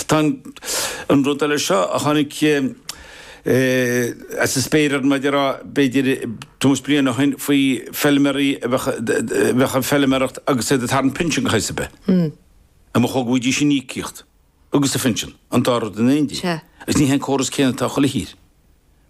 Tá an rud eile seo a tháinig as an spéir orm, mar a déarfá, b'fhéidir, tuairim is bliain ó shin faoi feilméaraí a bheadh ag feilméaracht agus iad ag tarraingt pinsean de shaghas ar bith. An mba chóir go bhfaighidís an íocaíocht agus an pinsean an dá rud in éindí? Agus ní hé an córas céanna atá i chuile thír,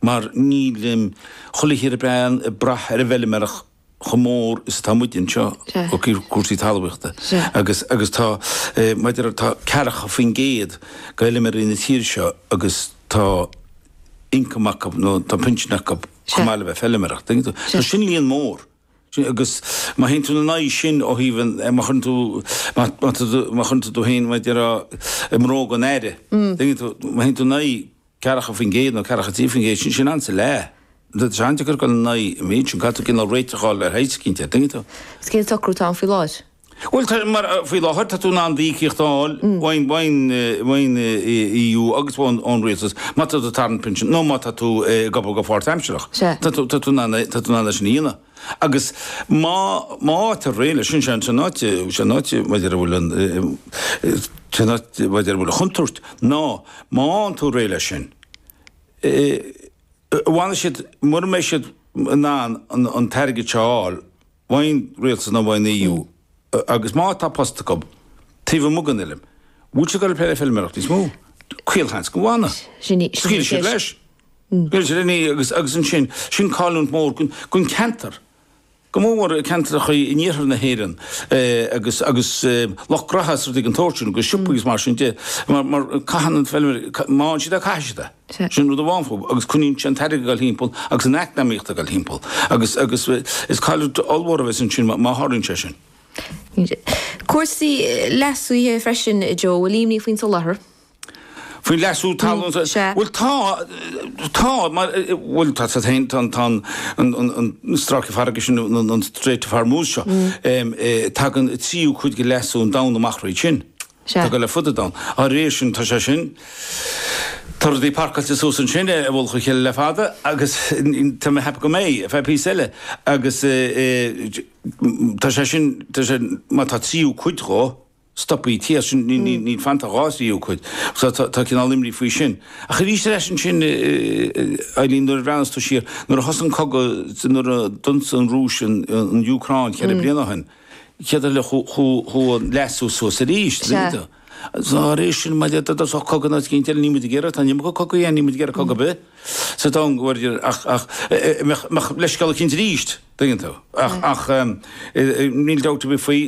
mar níl chuile thír ag brath ar an bhfeilméaracht chomh mór is atá muid anseo, ok, cúrsaí talmhaíochta agus, agus tá, mar a déarfá, tá ceathracha faoin gcéad d'fheilméaraí na tíre seo agus tá income acu nó tá pinsean acu chomh maith le bheith ag feilméaracht, tuigeann tú? So sin líon mór. Agus má théann tú ina n-aghaidh sin ó thaobh an, má chuireann tú, má, má, má chuireann tú tú féin, mar a déarfá, i mbróga an Aire, an dtuigeann tú, má théann tú in aghaidh 40% nó 43%, sin sin ionann's a leath. Tá sé an-deacair a ghoil in aghaidh an méid sin. Caithfidh tú cineál réiteach a fháil air, tá sé cinnte, an dtuigeann tú? Is cén socrú tá ann faoi láthair? Bhuel, tá, mar a, faoi láthair tá tú in ann d'íocaíocht a fháil ón, ón, ón EU agus ón, ón rialtas má tá tú ag tarraingt pinsin nó má tá tú ag obair go páirtaimsearach. Tá tú, tá tú in ann é, tá tú in ann é sin a dhéanamh. Agus má fhaightear réidh leis sin, is é an t-áit mar a déarfá a bhfuil an chontúirt ná má fhaigheann tú réidh leis sin, an bhfanfaidh siad, mura mbeidh siad in ann an t-airgead seo a fháil, uaidh an Rialtas nó uaidh an EU, agus má tá post acu taobh amuigh den fheilm, an bhfuil siad ag goil ag plé le feilméaracht níos mó? Caolsheans go bhfanfaidh. Scaoilfidh siad leis. Scaoilfidh siad leis agus ansin, sin cailliúint mór don cheantar, go mór mór ceantracha in iarthar na hÉireann agus lucht gnótha agus rudaí den tsórt sin, agus siopaí agus mar sin de, mar caitheann na feilméaraí, má fhaigheann siad é, caithfidh siad é. Sin rud amháin fúthu, agus coinníonn sé an t-airgead ag goil thimpeall agus an eacnamaíocht ag goil thimpeall, agus, agus is cailliúint ollmhór a bheas ansin má, má tharlaíonn sé sin. Cúrsaí leasaithe freisin, Joe, an bhfuil imní faoin soláthar. Faoin leasú talún, Sea, sea. Bhuel tá, tá, mar, bhuel tá, tá féin, tá, tá an, an, an, an stráice farraige sin, an, an, an Strait of Hormuz seo, tagann tríú cuid de leasú an domhain amach thríd sin. atá ag goil ar fud an domhain. Dhá réir sin, tá sé sin, tá rudaí parcáilte suas ansin i mullach a chéile le fada agus tá mé a cheapadh go mbeidh ar feadh píosa eile agus tá sé sin, tá sé, má tá tríú cuid dhó stoptha thíos ansin, níl fanta ach dhá thríú cuid so tá cineál imní faoi sin. Ach aríst ar ais ansin Eibhlín, nuair a bhreathnas tú siar, nuair a thosaigh an cogadh, nuair a d'ionsaigh an Rúis an Úcráin cheithre bliana ó shin, Cead dul le cur leasú suas arís. Sea. Dá réir sin, má d'fhéadfadh, d'fhásfadh cogadh ná cinnte eile, níl muid ag iarraidh, tá, níl muid ag cogadh a dhéanamh, níl muid ag iarraidh cogadh ar bith sa domhan go bhfuil idir, ach, ach, mbeadh, mbeadh leithscéal eicínt arís, tuigeann tú. Ach, ach, níl dabht ar bith faoi,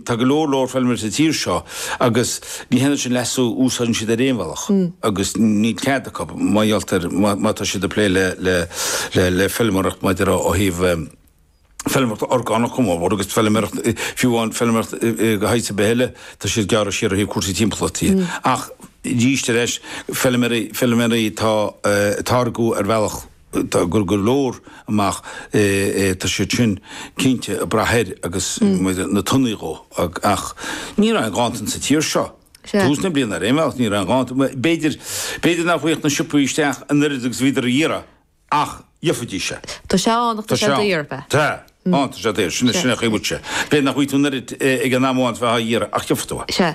tá go leor, leor feilméaraí sa tír seo agus ní dhéanann siad leasú a úsáid ar aon bhealach agus níl cead acu, mar gheall ar, má tá siad ag plé le, le, le, le feilméaracht, maidir ó thaobh, feilméaracht orgánach go mór mór agus feilméaracht, fiú amháin feilméaracht de shaghas ar bith eile, tá siad ag gearradh siar ó thaobh cúrsaí timpeallachta de. Ach arís ar ais, feilméaraí, feilméaraí atá ag táirgeadh ar bhealach, ag cur go leor amach, tá siad sin cinnte ag brath air agus na tonnaí dhó. Ach ní raibh aon ghanntan sa tír seo tús na bliana ar aon bhealach, ní raibh aon ghanntan. B'fhéidir, b'fhéidir nach bhfaigheadh na siopaí isteach an oiread agus a bhídís ag iarraidh. Ach gheofaidís é. Tá sé ann ach tá sé daor, b'ea? Tá, ann, tá sé daor, sin a chríoch uaitse. B'fhéidir nach bhfaighidh tú an oiread ag an am amháin is bheifeá á iarraidh, ach gheofaidh tú é. Sea.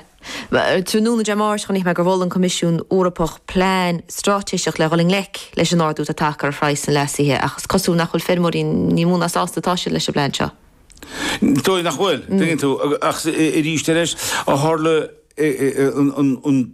Tráthnóna Dé Máirt chonaic mé gur mhol an Coimisiún Eorpach plean straitéiseach le dhul i ngleic leis an ardú atá tagtha ar phraghas na leasuithe, ach is cosúil nach bhfuil feirmeoirí ní mó ná sásta atá siad leis an bplean seo. Is dóigh nach bhfuil, tuigeann tú, ach arís ar ais, ó tharla an.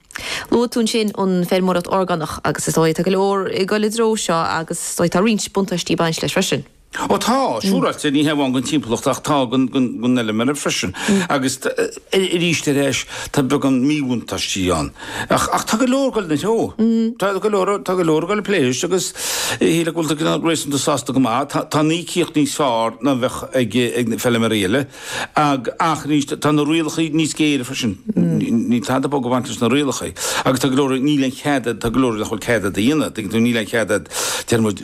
Luaigh tú ansin an feirmeoireacht orgánach agus is dóigh tá go leor ag dul i dtreo seo agus is dóigh tá roinnt buntáistí ag baint leis freisin. Ó tá, siúráilte, ní hé amháin don timpeallacht ach tá don fheilméara freisin agus arís ar ais tá beagán míbhuntáistí ann ach tá go leor ag dul ina threo. Tá go leor ag dul ag plé leis agus shílfeá go bhfuil siad réasúnta sásta go maith. Tá an íocaíocht níos fearr ná a bheadh ag na feilméaraí eile. Ach arís, tá na rialacha níos géire freisin. Níl tada bog ag baint leis na rialacha. Agus tá go leor, níl aon chead a'd, tá go leor nach bhfuil cead a'd a dhéanamh, tuigeann tú, níl aon chead a'd, déarfaidh muid,